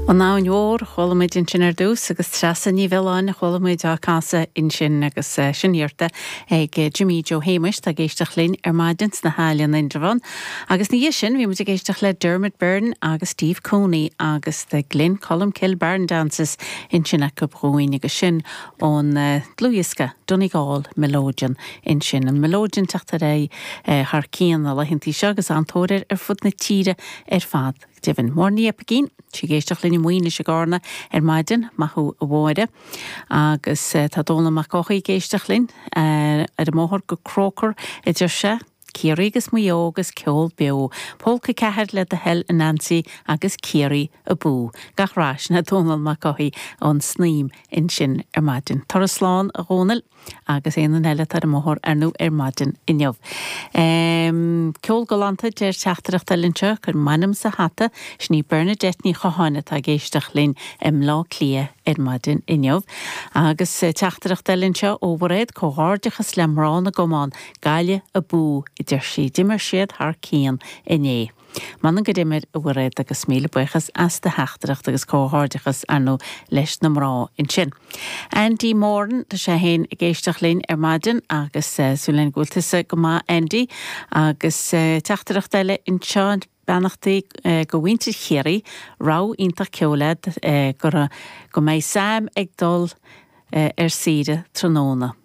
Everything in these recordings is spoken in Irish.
An Abhainn Mhór a chuala muid ansin ar dtús agus Treasa Ní Mhiolláin a chuala muid á casadh ansin agus sin iarrta ag Jimí Jó Shéamuis atá ag éisteacht linn ar maidin sna hAille in Indreabhán. Agus ina dhiaidh sin bhí muid ag éisteacht le Dermot Byrne agus Steve Cooney agus The Glen Colmcille Barn Dances ansin acu dhúinn agus sin ón dlúthdhiosca Donegal Melodeon ansin. An melodeon ag teacht ar aghaidh thar cionn na laethanta seo agus an-tóir air ar fud na tíre ar fad. deimhin. Máire Ní Aimhirgín, tá sí ag éisteacht linn i Maoinis i gCárna ar maidin. Maith thú a Mháire. Agus tá Dónall Mac Eochaidh ag éisteacht linn ar an mbóthar go Croker a deir sé. Ciarraí agus Maigh Eo agus ceol beo. Polca 4 le do thoil a Nancy agus Ciarraí abú. Gach rath, sin é Dónall Mac Eochaidh ón Snaoim ansin ar maidin. Tabhair aire slán a Dhónaill. agus Éanan Elliot ar an mbóthar arnó ar maidin inniu. Ceol galánta deir teachtaireacht eile anseo cuir m'ainm sa hata, sin í Bernadette Ní Chatháin atá ag éisteacht linn i mBleá Cliath ar maidin inniu. Agus teachtaireacht eile anseo ó Mhairéad, Comhghairdeachas le mná na gcamán, Gaillimh abú a deir sí, d'imir siad thar cionn inné. M'anam gur imir a Mhairéad agus míle buíochas as do theachtaireacht agus comhghairdeachas arnó leis na mná ansin. Andy Moran, tá sé fhéin ag éisteacht linn ar maidin agus súil linn go bhfuil tusa go maith Andy agus teachtaireacht eile anseo, beannachtaí go mhuintir Chiarraí, rogha iontach ceoil agat, go raibh, go mbeidh Sam ag dul ar saoire tráthnóna.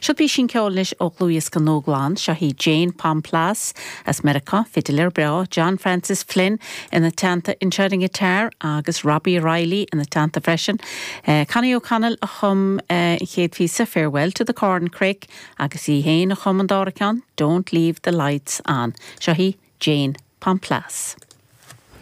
Seo písín ceoil anois ó dhlúthdhiosca nua glan. Seo hí Jayne Pomplas, as Meiriceá, fidléir breá, John Francis Flynn ina teannta anseo ar an ngiotar agus Robbie Reilly ina teannta freisin. Connie O'Connell a chum an chéad phíosa, Farewell to the Corncrake agus í fhéin a chum an dára ceann, Don't Leave the Lights On. Seo hí Jane, Pom Plas.